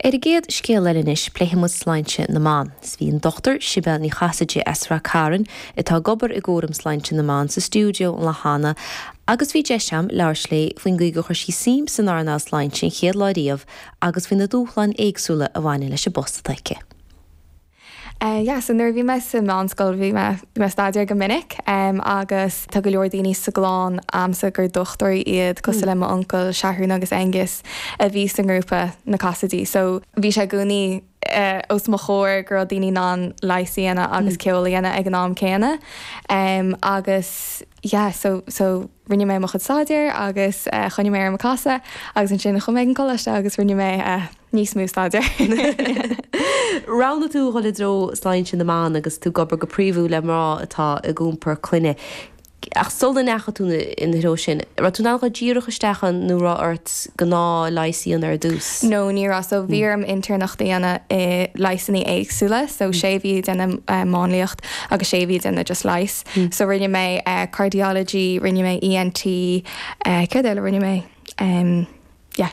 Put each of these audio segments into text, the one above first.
Ar an gcéad scéal eile anois pléifidh muid sláinte na mban. sea bhí an Dr Sibéal Ní Chasaide as Rath Cairn atá ag obair i gcúram sláinte na mban sa stiúideo an lá cheana agus bhí deis agam labhairt léi faoin gcaoi gur chuir sí suim san earnáil sláinte an chéad lá riamh agus faoi na dúshláin éagsúla a bhaineann leis an bpost atá aici. Eh yeah so nuair a bhí mé sa mheánscoil bhí mé bhí mé ag staidéar go minic em agus tá go leor daoiní sa gclann a'msa gur dochtúirí iad cosúil le m'uncail Seathrún agus Aengus a bhí sa ngrúpa Na Casaidigh so bhí sé i gcónaí eh os mo chomhair go raibh daoiní in ann leigheas a dhéanamh agus ceol a dhéanamh ag an am céanna em agus yeah so so Rinne mé mo chuid staidéir agus choinnigh mé orm ag casadh agus ansin chuaigh mé ag an gcoláiste agus rinne mé níos mó staidéir. Roghnaigh tú dhul i dtreo sláinte na mban agus tú ag obair go príomhúil le mná atá ag iompar clainne. Ach sula ndeachaigh tú ina threo sin, raibh tú in ann dhul díreach isteach ann nó raibh ort gnáthleigheas a dhéanamh ar dtús? No, ní raibh. So bhí orm intéirneacht a dhéanamh i leigheasannaí éagsúla, so sé mhí ag déanamh máinliacht agus sé mhí ag déanamh just leighis. So rinne mé Cardiology, rinne mé ENT, céard eile rinne mé? Yeah.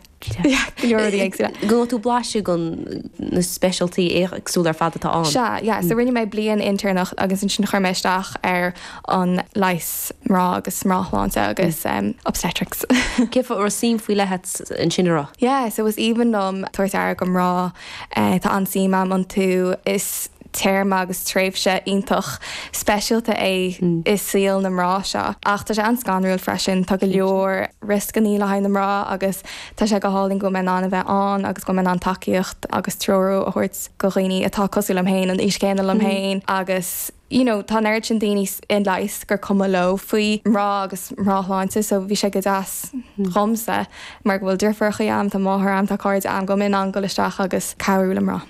Go bhfaigheann tú blaiseadh go na speisialtachtaí éagsúla ar fad atá ann. Sea, yeah, so rinne mé bliain intéirneacht agus ansin chuir mé isteach ar an leigheas mná agus mnáshláinte agus obstetrics. Cén fáth a raibh suim faoi leith ansin agat? Yeah, so is aoibhinn liom tabhairt aire go mná, tá an-suim agam iontu. Is Téarma agus tréimhse iontach speisialta é i saol na mná seo. Ach tá sé an-scanrúil freisin. Tá go leor rioscannaí le haghaidh na mná agus tá sé go hálainn go bhfuil mé in ann a bheith ann agus go bhfuil mé in ann tacaíocht agus treorú a thabhairt go dhaoine atá cosúil liom féin, an aois chéanna liom féin agus you know tá an oiread sin daoine i leigheas gur cuma leo faoi mná agus mnáshláinte so bhí sé go deas dhomsa mar go bhfuil deirfiúracha a'm, tá máthair a'm, tá cairde a'm go mbeinn in ann dul isteach agus cabhrú le mná.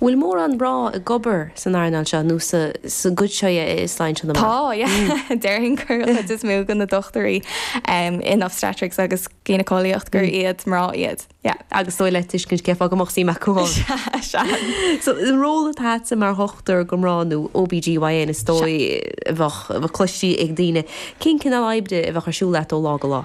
Bhfuil mórán mná ag obair san earnáil seo nó sa gcuid seo den tsláinte? Tá, yeah. Déarfainn gur an chuid is mó de na dochtúirí in obstetrics agus gynecolaíocht gur iad mná iad, yeah. Agus is dóigh le tuiscint cé fáth go mbeadh suim acu ann. Sea, sea. So, an ról atá agatsa mar dhochtúir go mná nó OBGYN is dóigh a bheadh cloiste ag daoine. Cén cineál oibre a bheadh ar siúl leat ó lá go lá?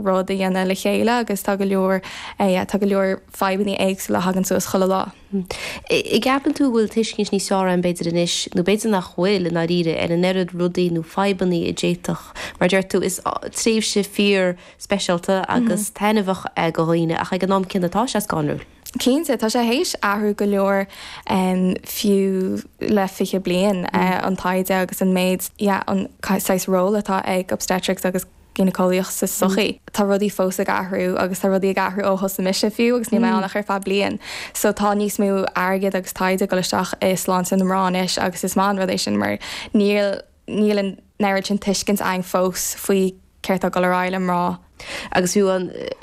rud a dhéanamh le chéile agus tá go leor tá go leor fadhbanna éagsúla a thagann suas chuile lá. An gceapann tú go bhfuil tuiscint níos fhearr ann b'fhéidir anois, nó b'fhéidir nach bhfuil i ndáiríre, ar an oiread rudaí nó fadhbanna a d'fhéadfadh, mar a deir tú, is tréimhse fíor speisialta agus taitneamhach é do dhaoine ach ag an am céanna tá sé scanrúil. Cinnte, tá sé théis athrú go leor fiú le 20 bliain, an taighde agus an méid, yeah, an saghas ról atá ag obstetrics agus gíneaceolaíocht sa tsochaí. Tá rudaí fós ag athrú agus tá rudaí ag athrú ó thosaigh mise fiú agus níl mé ann ach ar feadh bliain. So tá níos mó airgid agus taighde ag dul isteach i sláinte na mná anois agus is maith an rud é sin mar níl níl an oiread sin tuiscint againn fós faoi céard tá ag dul ar aghaidh le mná. Agus fiú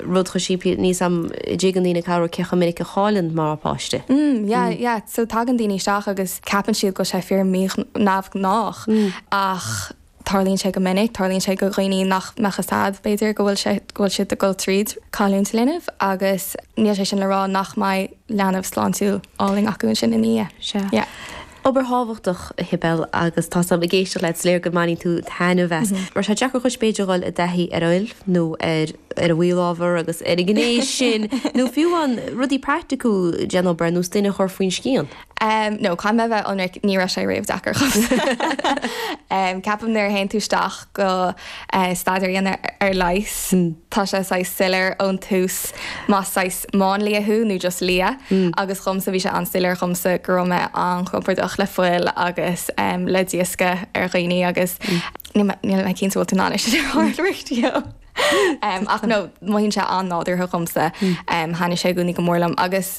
rud chomh simplí le ní ní thuigeann daoine cé cé chomh minic a chailleann mná páiste. Mm yeah yeah. So tagann daoine isteach agus ceapann siad go bhfuil sé fíor mí- neamhghnách ach Tarlaíonn sé go minic, tarlaíonn sé do dhaoine nach mbeadh a fhios acu, b'fhéidir, go bhfuil sé, go bhfuil siad ag dul tríd cailliúint linbh agus níl sé sin le rá nach mbeidh leanbh sláintiúil álainn acu ansin ina dhiaidh. Sea. Yeah. Obair thábhachtach, a Shibéal, agus tá sé ag éisteacht leat, is léir go mbaineann tú taitneamh as. Mar tá sé deacair a Shibéal a dhul i dtaithí ar fhuil nó ar ar an gcineál ábhar agus ar an ghné sin nó fiú an rudaí praiticiúil den obair nós duine a chur faoin scian. em no caithfidh mé a bheith ionraic ní raibh sé riamh deacair dhomsa em ceapaim nuair a théann tú isteach go eh staidéar a dhéanamh ar leigheas tá sé saghas soiléir ón tús más saghas máinlia thú nó just lia agus dhomsa bhí sé an-soiléir dhomsa go raibh mé an-chompordach le fuil agus em le dioscadh ar dhaoine agus níl mé níl mé cinnte bhfuil tú in ann é sin a staidéar you know em ach no mothaíonn sé an-nádúrtha dhomsa em thaitnigh sé i gcónaí go mór liom agus